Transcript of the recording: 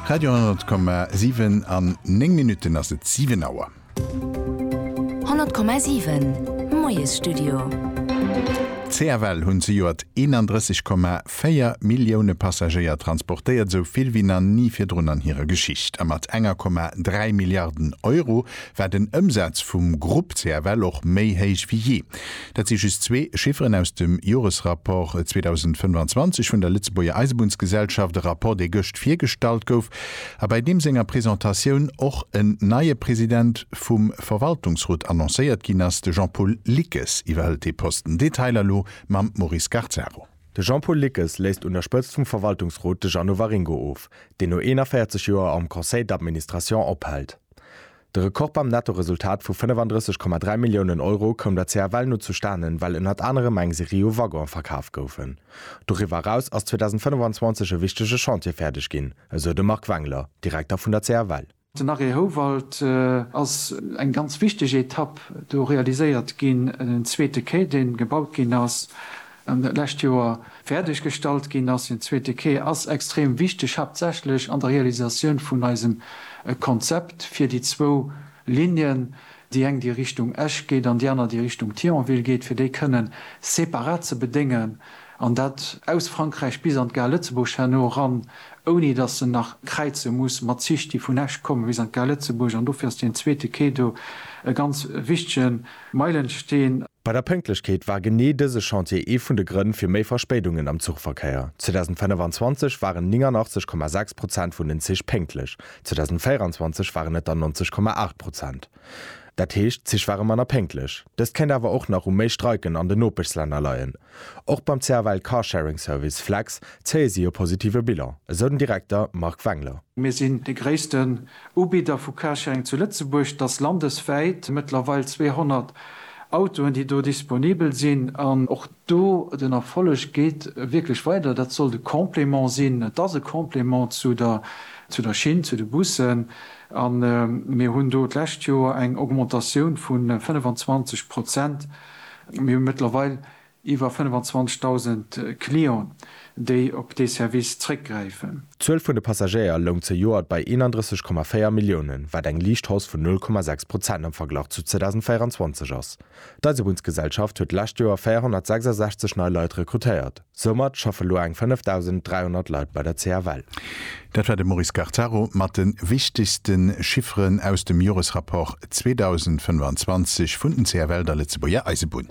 Radio 10,7 An 9 Minutten ass et 7 Auer. 10,7 Moiesstudio. CFL hunn zejoert 31,4 Millioune Passagéier transportéiert, esou vill wéi na ni virdrun an hirer Geschicht. A mat enger Komma 3 Milliarden Euro war den Ëmsaz vum Grupp CFL och méi héich wéi jee. Dat si just zwee Chifferen aus dem Joresrapport 2025 vun der Lëtzebuerger Eisebunnsgesellschaft, e Rapport dee gëscht virgestallt gouf a bäi deem senger Presentatioun och en neie President vum Verwaltungsrot annoncéiert ginn ass. De Jean-Paul Lickes iwwerhëlt dee Posten. Detailer elo mam Maurice Garzaro. De Jean-Paul Lickes léisst un der Spëtzt vum Verwaltungsrot de Jeannot Waringo of, deen no 41 Joer am Conseil d'administration ophält. De Rekord beim Nettoresultat vu 35,3 Milliounen Euro koum der CFL no zustanen, well ënnert anerem eng Serie u Waggonen verkaf goufen. Doriwwer eraus ass 2025 e wichtege Chantier fäerdeg ginn, esou de Marc Wengler, Direkter vun der CFL. Den Arrêt Houwald ass eng ganz wichteg Etapp. Do realiséiert ginn en zweete Quai, dee gebaut ginn ass. an dat lescht Joer fäerdeg gestallt ginn ass. Deen zweete Quai ass extrem wichteg, haaptsächlech an der Realisatioun vun eisem Konzept fir déi zwou Linnen, déi eng déi Richtung Esch geet an déi aner déi Richtung Thionville geet, fir déi kënne separat ze bedéngen, an dat aus Frankräich bis an d'Gare Lëtzebuerg herno eran, ouni datt se nach kräize muss mat Zich, déi vun Esch kommen bis an d'Gare Lëtzebuerg. An dofir ass deen zweete Quai do e ganz wichtegen. Meilensteen. Bei der Pënktlechkeet war genee dëse Chantier ee vun de Grënn fir méi Verspéidungen am Zuchverkéier. 2025 waren 89,6 Prozent vun den Zich pénktlech, 2024 waren et der 90,8 Prozent. Dat heescht, d'Zich ware manner pénktlech. Dëst kéint awer och nach u méi Streiken an den Nopeschslänner leien. Och beim CFL Carsharing Service Flex zéie si e positive Bilan, esou den Direkter Marc Wengler. Mir sinn de gréisste Ubidder vu Carsharing zu Lëtzebuerg, dass landeswäit mëttlerweil 200 Autoen, déi do disponibel sinn, an och do den Erfolleg geet wierklech weider, dat sollt e Complément sinn, et ass e Complément zu der zu der Schinn, zu de Bussen, a mir hunn do d'lescht Joer eng Augmentatioun vu 25 Prozent, mir hu mëttlerweil Iwwer 25.000 Client, déi op dee Service zréckgräifen. D'Zuel vun de Passagéier loung zejoert bei 31,4 Milliounen, wat eng liicht Hausse vun 0,6 Prozent am Verglach zu 2024 ass. D'Eisebunnsgesellschaft huet d'lescht Joer 466 nei Leit rekrutéiert. Soumat schaffe lo eng 5.300 Leit bei der CFL. Dat war de Maurice Gattaro mat de wichtegste Chifferen aus dem Joresrapport 2025 vun den CFL, der Lëtzebuerger Eisebunn.